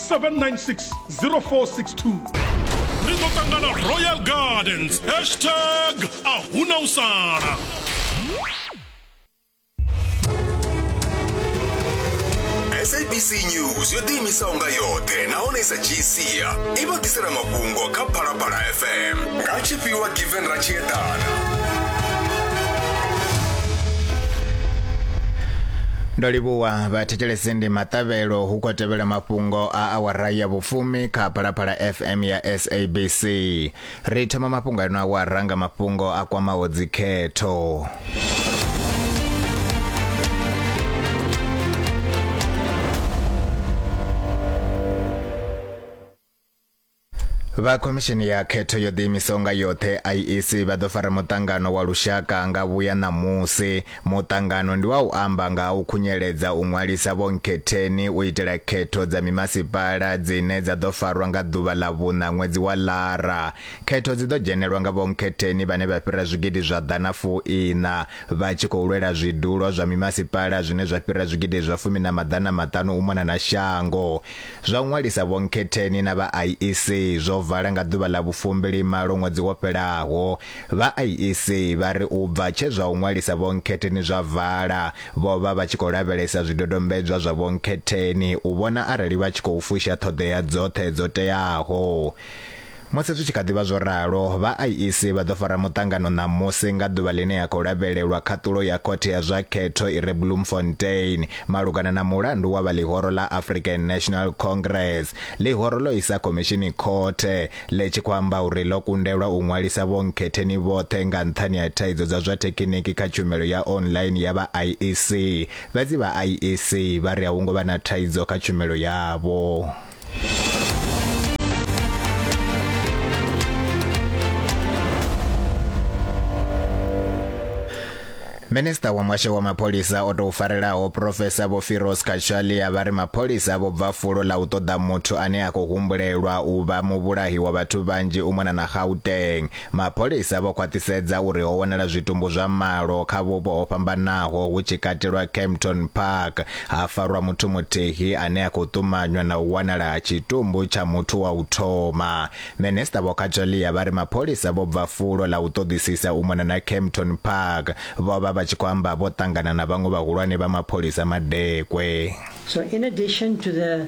796 ri ḓo ṱangana royal gardens hashtag a huna u sala sabc news yo ḓiimisaho nga yoṱhe nahone i sa dzhii sia i vha ḓisela mafhungo kha phalaphala fm nga tshifhiwa given ra tshi eḓana ndo livhuwa vhathu thetshelesi ndi maṱavhelo hu khou tevhela mafhungo a awara ya vhufumi kha phalaphala fm ya sabc ri thoma mafhungo ano awara nga mafhungo a kwamaho dzikhetho Vha Khomishini ya Khetho yo Ḓiimisaho nga Yoṱhe, IEC, vha ḓo fara muṱangano wa lushaka nga vhuya ṋamusi. Muṱangano ndi wa u amba nga ha u khunyeledza u ṅwalisa vhonkhetheni u itela khetho dza mimasipala dzine dza ḓo farwa nga ḓuvha ḽa vhuṋa ṅwedzi wa Lara. Khetho dzi ḓo dzhenelwa nga vhonkhetheni vhane vha fhira zwigidi zwa ḓana fuiṋa vha tshi khou lwela zwidulo zwa mimasipala zwine zwa fhira zwigidi zwa fumi na maḓana maṱanu u mona na shango. Zwa u ṅwalisa vhonkhetheni na vha IEC zwo vala nga ḓuvha ḽa vhufumbili malo ṅwedzi wo fhelaho. Vha IEC vha ri u bva tshe zwa u ṅwalisa vhonkhetheni zwa vala, vho vha vha tshi khou lavhelesa zwidodombedzwa zwa vhonkhetheni u vhona arali vha tshi khou fusha ṱhoḓea dzoṱhe dzo teaho. Musi zwi tshi kha ḓi vha zwo ralo, vha IEC vha ḓo fara muṱangano ṋamusi nga ḓuvha ḽine ya khou lavhelelwa khaṱulo ya Khothe ya zwa Khetho i re Bloemfontein malugana na mulandu wa vha ḽihoro ḽa African National Congress. Ḽihoro ḽo isa khomishini khothe ḽe tshi khou amba uri ḽo kundelwa u ṅwalisa vhonkhetheni vhoṱhe nga nṱhani ha thaidzo dza zwa thekhiniki kha tshumelo ya online ya vha IEC. Fhedzi vha IEC vha ri a hu ngo vha na thaidzo kha tshumelo yavho. Minista wa muhasho wa mapholisa o tou farelaho Profesa Vho Firoz Kachalia vha ri mapholisa vho bva fulo ḽa u ṱoḓa muthu ane a khou humbulelwa u vha muvhulahi wa vhathu vhanzhi u mona na Gauteng Mapholisa vho khwaṱhisedza uri ho wanala zwitumbu zwa malo kha vhupo ho fhambanaho hu tshi katelwa Kempton Park, ha farwa muthu muthihi ane a khou ṱumanywa na u wanala ha tshitumbu tsha muthu wa u thoma. Minisiṱa Vho Cacholia vha ri mapholisa vho bva fulo ḽa u ṱoḓisisa u mona na Kempton Park, vho vha vha tshi khou amba vho ṱangana na vhaṅwe vhahulwane vha mapholisa madekwe. So in addition to the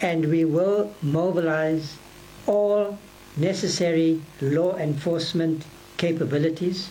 and we will mobilize all necessary law enforcement capabilities.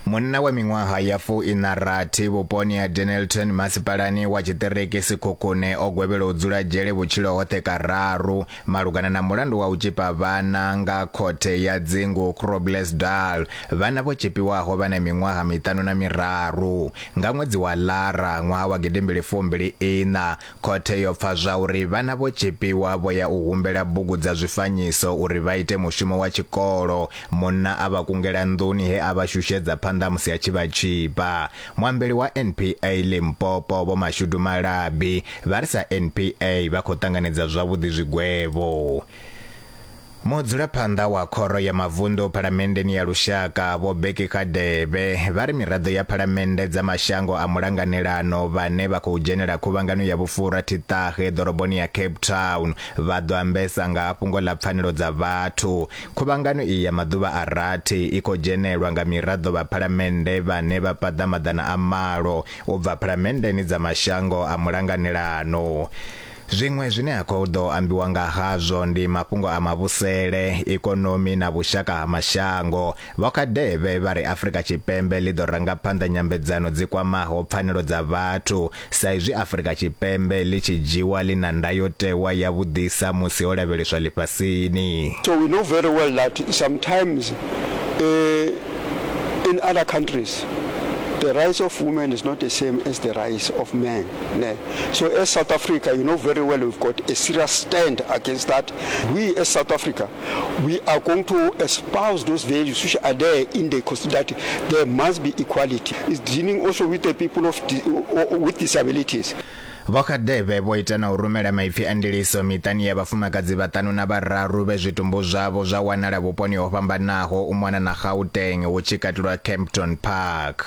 Munna wa miṅwaha ya fu ina rathi vhuponi ha Denelton masipalani wa tshiṱiriki Sikhukhune o gwevhelwa u dzula dzhele vhutshilo hoṱhe kararu malugana na mulandu wa u tshipa vhana nga khothe ya dzingu Groblersdal. Vhana vho tshipiwaho vha na miṅwaha miṱanu na miraru. Nga ṅwedzi wa Lara ṅwaha wa gidimbili fumbili ina, Khothe yo pfa zwauri vhana vho tzhipiwa vho ya u humbela bugu dza zwifanyiso uri vha ite mushumo wa tshikolo. Munna a vha kungela nḓuni he a vha shushedza phanḓa musi a tshi vha tzhipa. Muambeli wa NPA Limpopo Vho Mashudu Malabi vha ri sa NPA vha khou ṱanganedza zwavhuḓi zwigwevho. Mudzulaphanḓa wa Khoro ya Mavunḓu Phalamenndeni ya Lushaka, Vho Bheki Radebe, vha ri miraḓo ya phalamennde dza mashango a mulanganelano vhane vha khou dzhenela khuvhangano ya vhufhura thiṱahe ḓoroboni ya Cape Town vha ḓo ambesa nga ha fhungo ḽa pfanelo dza vhathu. Khuvhangano iyi ya maḓuvha a rathi i khou dzhenelwa nga miraḓo vha phalamennde vhane vha paḓa maḓana a malo u bva phalamenndeni dza mashango a mulanganelano. Zwiṅwe zwine ha khou ḓo ambiwa nga hazwo ndi mafhungo a mavhusele, ikonomi na vhushaka ha mashango. Vho Kadebe vha ri Afrika Tshipembe ḽi ḓo ranga phanḓa nyambedzano dzi kwamaho pfanelo dza vhathu sa izwi Afrika Tshipembe ḽi tshi dzhiwa ḽi na ndayotewa ya vhuḓisa musi ho lavheleswa ḽifhasini. So we know very well that sometimes in other countries the rights of women is not the same as the rights of men. So as South Africa, you know very well we've got a serious stand against that. We as South Africa, we are going to espouse those values which are there in the constitution that there must be equality. It's dealing also with the people of di- with disabilities. vho khadebe vho ita na u rumela maipfi a ndiliso miṱani ya vhafumakadzi vhaṱanu na vhararu vhe zwitumbu zwavho zwa wanala vhuponi ho fhambanaho u mona na gauteng hu tshi katelwa campton park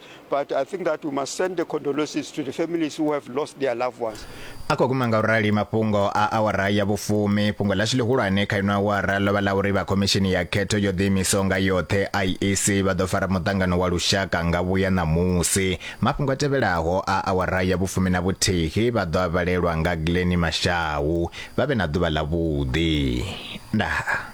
but i think that we must send the condolences to the families who have lost their loved ones a khou guma nga u rali mafhungo a awara ya vhufumi fhungo ḽashu ḽihulwane kha ino awara ḽo vha ḽa uri vha khomishini ya khetho yo ḓiimisaho nga yoṱhe iec vha ḓo fara muṱangano wa lushaka nga vhuya ṋamusi mafhungo a tevhelaho a awara ya vhufumi na vhuthihi vha ḓo a vhalelwa nga gleni mashau vha vhe na ḓuvha ḽa vhuḓi ndaa